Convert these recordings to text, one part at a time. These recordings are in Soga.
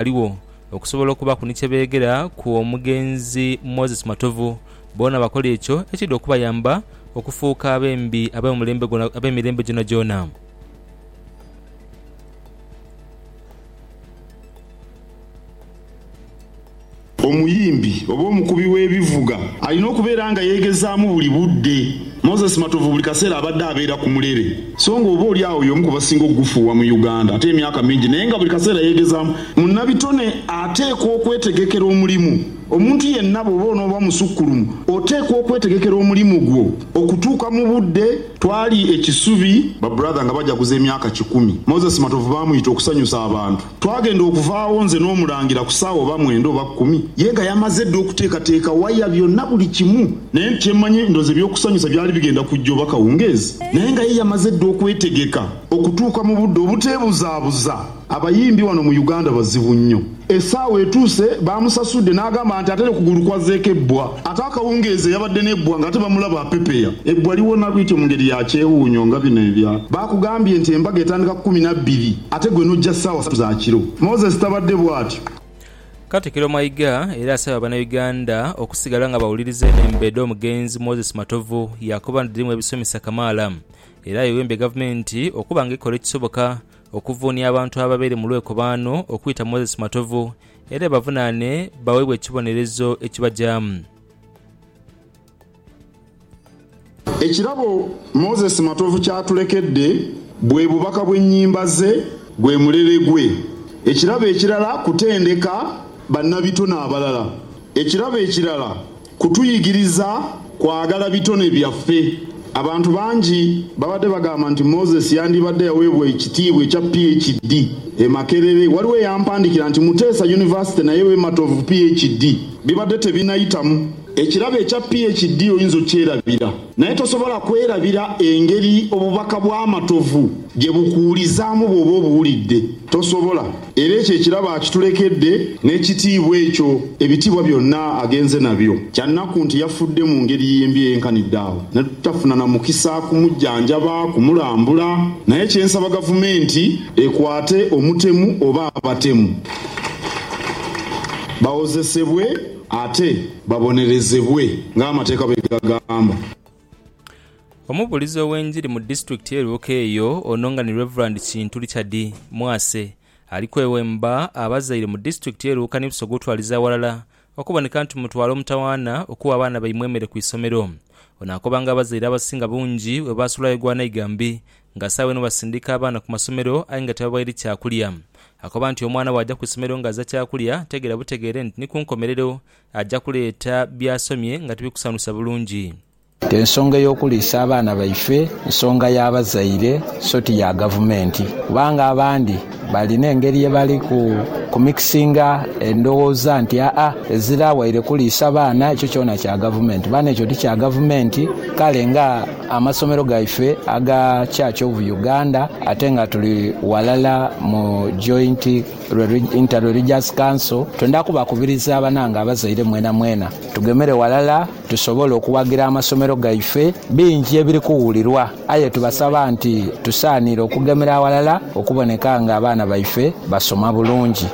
baligho okusobola okubaku ni kye beegera ku omugenzi Moses Matovu. Boona bakola ekyo ekiidha okubayamba okufuuka abembi ab'emirembe gyonagyona. Omuyimbi oba omukubi w'ebivuga alina okubeera nga yeegezaamu buli budde. Moses Matovu buli kaseera abadde abeera ku mulere so nga oba oli agho y'omu ku basinga okugufuuwa mu Uganda ate emyaka mingi naye nga buli kaseera yeegezaamu. Munnabitone ateekwa okwetegekera omulimu. Omuntu yenna bw'oba onooba musukkulumu oteekwa okwetegekera omulimu gwo okutuuka mu budde. Twali e Kisubi. Ba brother nga bajaguza emyaka kikumi. Moses Matovu baamuyita okusanyusa abantu. Twagenda okuva agho nze n'Omulangira ku saawa oba mwenda oba kumi, ye nga yamaze dha okuteekateeka waya, byonna buli kimu. Naye nti kyemmanyi ndowooza eby'okusanyusa byali bigenda kujja oba kawungeezi, naye nga ye yamaze dha okwetegeka okutuuka mu budde obuteebuzaabuza. Abayimbi wano mu Uganda bazibu nnyo. Esaawa etuuse baamusasudde n'agamba nti ate leka kugulu kwazzeeko ebbwa. Ate akawungeezi eyabadde n'ebbwa ng'ate bamulaba apepeya, ebbwa liwona bwityo mu ngeri ya kyewuunyo nga bino ebya. Baakugambye nti embaga etandika kumi na bbiri ate gwe n'ojja ssaawa ssatu za kiro. Moses tabadde bwatyo. Katikiro Mayiga era asaba banauganda okusigala nga bawuliriza eno embeeda omugenzi Moses Matovu yakoba nti dhirimu ebisomesa kamaala era ayewembye gavumenti okuba nga ekola ekisoboka okuvuunia abantu ababaire mu lwekobaano okuyita Moses Matovu Era ebavunaane baweebwe ekibonerezo ekibajaamu. Ekirabo Moses Matovu kyatulekedde bwe bubaka bw'ennyimba ze gwe mulere gwe. Ekirabo ekirala kutendeka bannabitone abalala. Ekirabo ekirala Kutuyigiriza kwagala bitone byaffe. Abantu bangi babadde bagamba nti Moses yandibadde yaweebwa ekitiibwa ekya PHD e Makerere. Waliwo eyampandikira nti Muteesa University nayo ebe Matovu PHD. Bibadde tebinayitamu. Ekirabo ekya PHD oyinza okyerabira, naye tosobola kwerabira engeri obubaka bwa Matovu gye bukuwulizaamu bw'oba obuwulidde. Tosobola. Era ekyo ekirabo akitulekedde, n'ekitiibwa ekyo, ebitiibwa byonna agenze nabyo. Kya nnaku nti yafudde mu ngeri y'embi eyenkanidde agho, ne tutafuna na mukisa kumujjanjaba, kumulambula. Naye kye nsaba Gavumenti ekwate omutemu oba abatemu bawozesebwe ate babonerezebwe ng'amateeka bwe gagamba. Omubuulizi ow'enjiri mu disitulikiti ye Luuka eyo ono nga ni Rev. Kintu Richard Mwase ali kwewemba abazaire mu disitulikiti ye Luuka ni Busoga okutwaliza aghalala okuboneka nti mutwala omutawaana okuwa abaana baimwe emere ku isomero. Ono akoba nga abazaire abasinga bungi webasulayo gwa naiga mbi nga saawa eno basindika abaana ku masomero aye nga tibabaire kyakulya. Akoba nti omwana bwaja ku isomero nga aza kyakulya tegeera butegeere nti ni ku nkomerero Aja kuleeta by'asomye nga tibikusanusa bulungi. Ensonga ey'okuliisa abaana baife nsonga ya bazaire so ti ya gavumenti kubanga abandi balina engeri ye bali ku mikisinga endowooza nti aa ezira waire kuliisa baana ekyo kyona kya gavumenti. Bano ekyo ti kya gavumenti kale nga amasomero gaife aga Church of Uganda ate nga tuli walala mu Joint Inter Religious Council, twendha kubakubiriza banange abazaire mwenamwena tugemere ghalala tusobole okuwagira amasomero gaife. Bingi ebiri kuwulirwa aye tubasaba nti tusaanire okugemera aghalala okuboneka nga abaana baife basoma bulungi.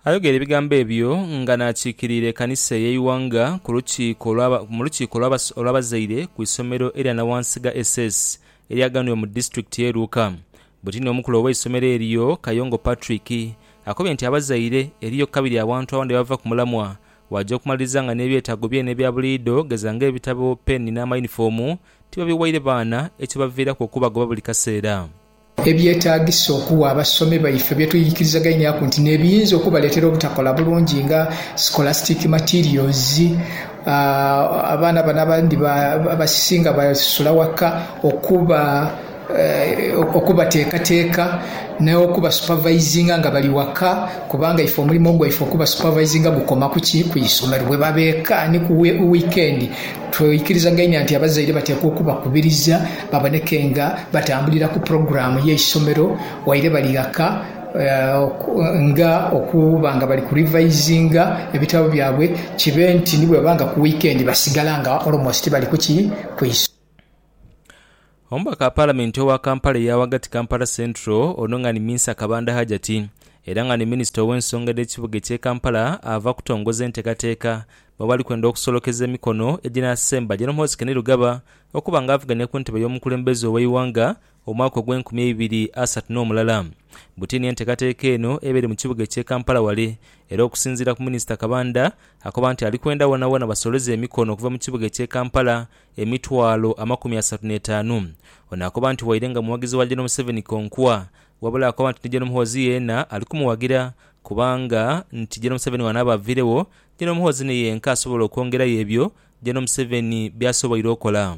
Ayogera ebigambo ebyo nga naakikirira ekanisa eye Iwanga ku lukiiko mu lukiiko olw'abazaire ku isomero erya Nawansiga SS eryaganhibwa mu disitulikiti ye Luuka. Buti n'omukulu ow'eisomero eryo, Kayongo Patrick, akobye nti abazaire eriyo kabiri awantu awandi abava ku mulamwa waja okumaliriza nga n'ebyetaago byene ebya buliidho geza ng'ebitabo, peeni n'amayunifoomu tibabiwaire baana ekibaviiraku okubagoba buli kaseera. Ebyetaagisa okuwa abasomi baife bye tweikirizagainiaku nti n'ebiyinza okubaleetera obutakola bulungi nga scholastic materials, Abaana bano abandi abasisinga basula waka okuba okubateekateeka n'okubasupavaizinga nga bali waka kubanga ife omulimo gwaife okubasupavaizinga gukoma ku ki? Ku isomero. Bwe baba eka ni ku wiikendi, tweikirizagainia nti abazaire bateekwa okubakubiriza baboneke nga batambulira ku pulogulaamu y'eisomero waire bali ghaka. nga okuba nga bali ku revaisinga ebitabo byabwe kibe nti ni bweba nga ku wiikendi basigala nga almost bali ku ki? Ku isomero. Omubaka wa Palamenti owa Kampala eya ghagati Kampala Central ono nga ni Minsa Kabanda Hajati era nga ni Minisita ow'ensonga edh'ekibuga eky'e Kampala ava kutongoza enteekateeka mwebali kwenda okusolokeza emikono eginasemba General Muhoozi Kainerugaba okuba nga avuganya ku ntebe y'omukulembeze ow'eighanga Omwaka ogw'enkumi eibiri asatu n'omulala. Butini enteekateeka eno ebeere mu kibuga eky'e Kampala wale era okusinziira ku Minisita Kabanda, akoba nti ali kwenda wonawona basoleze emikono okuva mu kibuga eky'e Kampala emitwalo amakumi asatu n'etaanu. Ono akoba nti waire nga muwagizi wa Gen Museveni konkwa wabula akoba nti ni Gen Muhoozi yeena ali kumuwagira kubanga nti Gen Museveni wanaaba aviiregho, Gen Muhoozi ni yenka asobola okwongerayo ebyo Gen Museveni by'asoboire okola.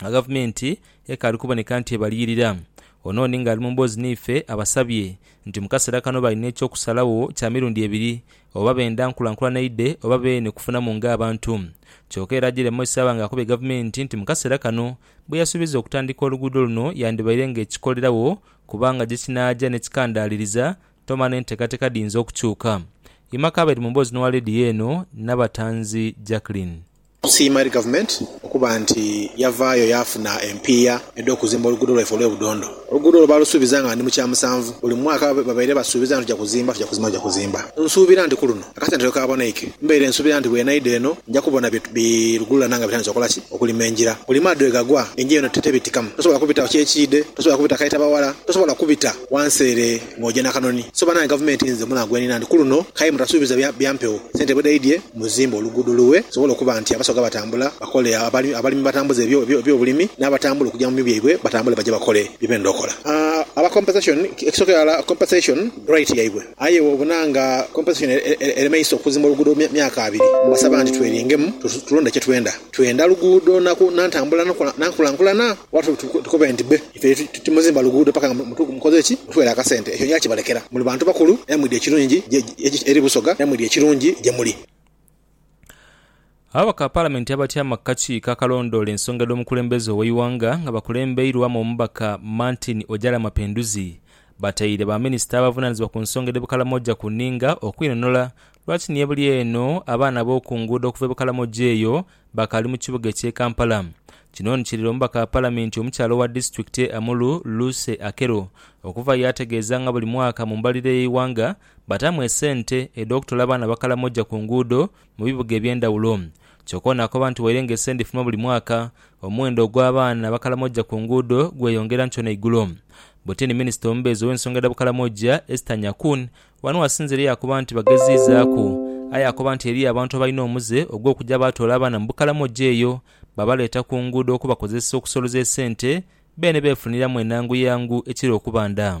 nga Gavumenti ekaali kuboneka nti ebaliyirira. Onon ng'ali mu mboozi n'ife abasabye nti mu kaseera kano balina eky'okusalagho kya mirundi ebiri oba benda nkulankulana eidhe oba beene kufunamu ng'abantu. Kyoka era Jere Moise aba ng'akubye Gavumenti nti mu kaseera kano bweyasuubiza okutandika oluguudo luno yandibaire ng'ekikolerawo kubanga gyekinaaja n'ekikandaaliriza toma n'enteekateeka dhiyinza okukyuka. Ima Kabeere mu mboozi n'owa leediyo eno Nabatanzi Jacqueline. Tusiima eri Gavumenti okuba nti yavaayo yaafuna empiiya edh'okuzimba oluguudo lwaife olw'e Budondo. Oluguudo olwo baalusuubiza nga ndi mu kya musanvu. Buli mwaka babaire basuubiza nga tuja kuzimba, tuja kuzimba, tuja kuzimba. Nsuubira nti ku luno akasente lwe kaaboneike. Mbaire nsuubira nti bwe naidha eno nja kubona bi lugululana nga bitandise okola ki? Okulima engira. Buli maadhi lwe gagwa, engira eno tebitikamu. Tosobola kubitawo kyekiidhe, tosobola kubita Kaita Bawala, tosobola kubita wansi ere. Ng'oja n'akanoni. So banange gavumenti nze munaku gwenina nti kuluno kaye mutasuubiza bya bya mpewo, sente bwedaidye muzimbe oluguudo lughe lusobole okuba nti abasoga batambula bakole, abali abalimi batambuze ebyo ebyobulimi n'abatambula okuja mu mi byaibwe batambule baje bakole bye benda okola. Aba compensation ekisooka irala compensation right yaibwe aye bwobona nga compensation eremeisa okuzimba oluguudo mu myaka abiri mbasaba nti tweringemu tulonde kyetwenda. Twenda luguudo na na ntambula na nkulankulana oba tukobe nti bbe. Ife titimuzimba luguudo paka nga mukoze ki? Mutwere akasente. Ekyo njakibalekera. Muli bantu bakulu era mwidhi ekirungi eri Busoga era mwidhi ekirungi gye muli. Ababaka ba Palamenti abatyama ku kakiiko akalondoola ensonga edh'omukulembeze ow'eighanga nga bakulembeirwamu omubaka Martin Ojala Mapenduzi bataire ba minisita abavunanizibwa ku nsonga edh'e Bukalamoja ku ninga okwinonhola lwaki ni ebuli eno abaana b'oku nguudo okuva e Bukalamoja eyo Bakali mu kibuga ekye Kampala. Kino ni kirira omubaka wa Palamenti omukyala owa disitulikiti ye Amuru, Lucy Akello okuva yaategeeza nga buli mwaka mu mbalirira y'eighanga bataamu esente edh'okutola abaana abakalamoja ku nguudo mu bibuga eby'endhawulo. Kyoka ono akoba nti waire nga esente dhifuluma buli mwaka, omuwendo ogw'abaana abakalamoja ku nguudo gweyongera nkyo n'eigulo. Bwetini minisita omubeezi ow'ensonga dha bukalamoja Esther Nyakun Wano Asinzireyo akoba nti bageziizaaku, aye akoba nti eriyo abantu abalina omuze ogw'okuja baatoola abaana mu Bukalamoja eyo babaleeta ku nguudo okubakozesa okusoloza esente beene beefuniramu enangu yangu ekira okuba nda.